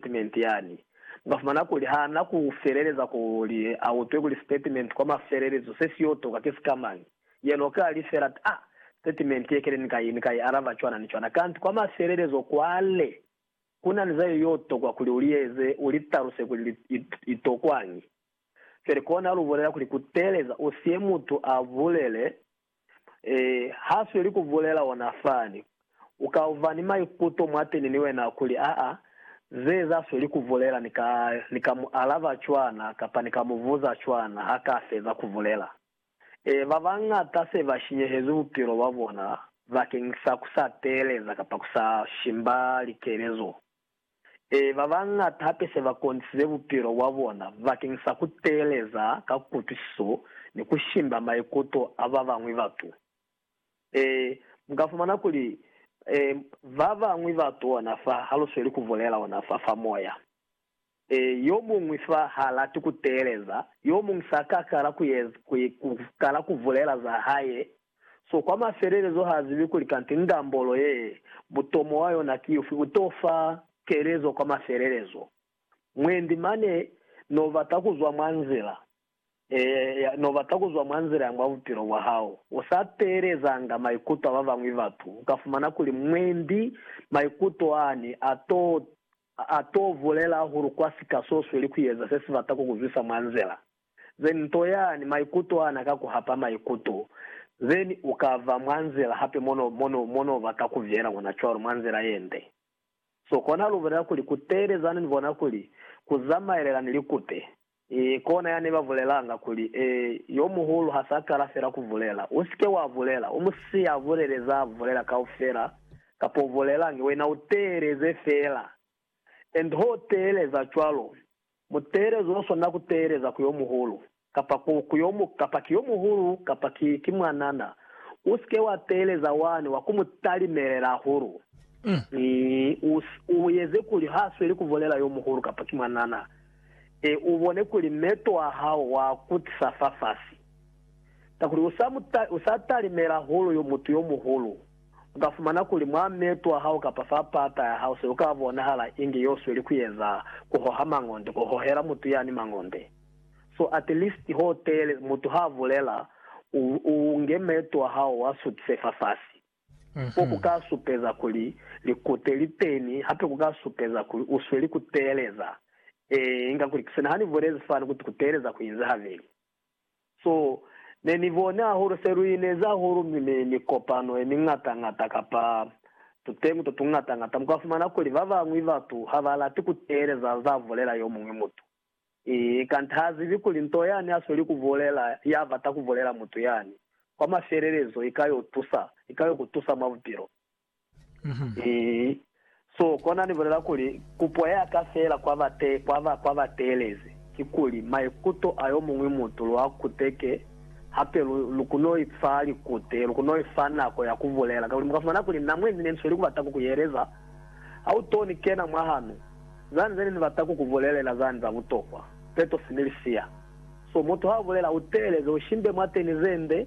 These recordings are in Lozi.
sitatimenti yani. Nga fumana kuli ha na ku feleleza kuli a utwe kuli sitatimenti kwa mafelelezo se si yo toka ki sikamañi, yena u ka li fela, Ta, sitatimenti ye kene ni kai, ni ka i alaba cwana ni cwana. Kanti kwa mafelelezo kwale, ku na ni za ye yo tokwa kuli u li eze, u li taluse kuli li, i, i tokwañi. Feli kona lu bulela kuli, Ku teeleza u sie mutu a bulele. Ee, ha sweli ku bulela ona fani. U ka uva ni maikuto mwateni ni wena kuli, Aa, ze za sweli ku bulela ni ka, ni ka mu alaba cwana kapa ni ka mu buza cwana ha ka feza ku bulela. Ee, ba bañata se ba shinyehezwi bupilo bwa bona bakeng sa ku sa teeleza kapa ku sa shimba likelezo. Ee, ba bañata hape se ba konisize bupilo bwa bona bakeng sa ku teeleza ka kutwisiso ni ku shimba maikuto a ba bañwi batu. Ee, mu ka fumana kuli, ee, ba bañwi batu ona fa ha lu sweli ku bulela ona fa, fa moya. Ee, yo muñwi fa ha lati ku teeleza, yo muñwi sa ka kala ku, ku kala ku bulela za hae So kwa mafelelezo ha zibi kuli kanti ndambolo ye, butomo wa yona ki ufi, u to fa kelezo kwa mafelelezo. Mwendi mane no bata ku zwa mwa nzila, eya, no bata ku zwa mwa nzila ya mwa bupilo bwa hao. U sa teelezanga maikuto a ba bañwi batu, u ka fumana kuli mwendi maikuto ani a to, a to bulela hahulu kwa sika so sweli ku eza se si bata ku ku zwisa mwa nzila. Then nto yani maikuto ana ka ku hapa maikuto, then u ka va mwa nzila hape mo no, mo no, mo no ba ka ku viela kona cwalo, mwa nzila ye nde. So kona lu bulela kuli, Ku teelezani ni bona kuli ku zamaelela ni likute. E, kona ya ne ba bulelanga, kuli, E, yo muhulu ha sa kala fela ku bulela, u si ke wa bulela, u mu siye a bulele za a bulela kaufela, kapa u bulelangi, wena u teeleze fela. and ho teeleza cwalo, muteelezo o swana ku teeleza ku yo muhulu, kapa ku, ku yo mu, kapa ki yo muhulu, kapa ki, ki mwanana, u si ke wa teeleza wani wa ku mu talimelela hahulu. I, u, u eze kuli ha sweli ku bulela yo muhulu kapa ki mwanana, e, u bone kuli meto a hao wa kutisa fafasi, kakuli u sa mu ta, u sa talimela hahulu yo, mutu yo muhulu. U ka fumana kuli mwa meeto a hao kapa fa pata ya hao se u ka bonahala inge y'o sweli ku eza ku hoha mangonde, ku hohela mutu yani mangonde. So at least ho teele, mutu ha a bulela, u, u nge meeto a hao wa sutise fafasi. Ko ku ka supeza kuli likute li teni, hape ku ka supeza kuli u sweli ku teeleza. Ee, inga kuli, ki sina ha ni bulezi fani, kuti ku teeleza ku inzi habeli. So, ne ni boni hahulu se lu ineza hahulu mi, mi, mikopano ye miñata-ñata, kapa tuteñi to tuñata-ñata, muka fumana kuli ba bañwi batu ha ba lati ku teeleza za bulela yo muñwi mutu. Ii, kanti ha zibi kuli nto yani a sweli ku bulela, ya bata ku bulela mutu yani, kwa mafelelezo i ka yo tusa, i ka yo ku tusa mwa bupilo. Ii, So kona ni bulela kuli, kupo ya ka feela kwa ba te, kwa ba, kwa ba teelezi, kikuli, maikuto a yomuñwi mutu lu a kuteke, hape lu, lu kono i fa likute, lu kono i fa nako ya ku bulela, kakuli muka fumana kuli na mwendi ne ni sweli ku bata ku ku yeleza, ha u to ni kena mwa hanu, zani zeni ni bata ku ku bulelela zani za butokwa, peto sini li siya. So mutu ha u bulela, u teeleze, u shimbe mwateni zende,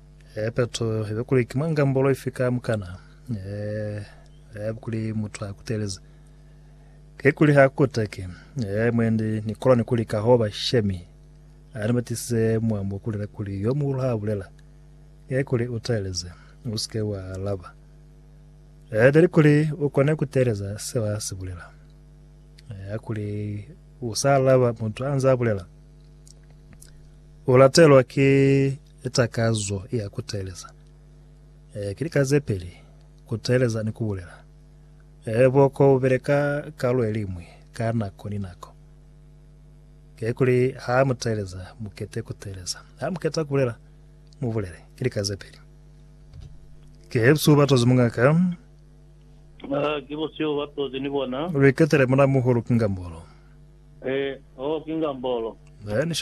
Eh, Petro, ibe kuli ki mwa ngambolo ifi ka mukana? Eh, eh, kuli mutu ha kutelezi. Ke kuli ha kuteki. Eh, mwendi, ni kola ni kuli ka hoba shemi. A ni batisize mwa mu bulela kuli yo muhulu ha bulela. Ke kuli u teleze. U sike wa alaba. Eh, beli kuli u kone kuteleza seo a si bulela. Eh, kuli u sa alaba mutu anza bulela. U latelwa ki Ki takazo ya ku teeleza. Ee, ki lika ze peli, ku teeleza ni ku bulela. Ee, buoko bu beleka kalu ye liñwi ka nako ni nako. Kekuli ha mu teeleza, mu kete ku teeleza. Ha mu keta ku bulela, mu bulele. Ki lika ze peli. Ki busihu ba tozi, mongaka. Aa, ki busihu ba tozi ni bona. Lu iketele muna muhulu, ki ngambolo. Ee, oh, ki ngambolo. Ee, ni sha.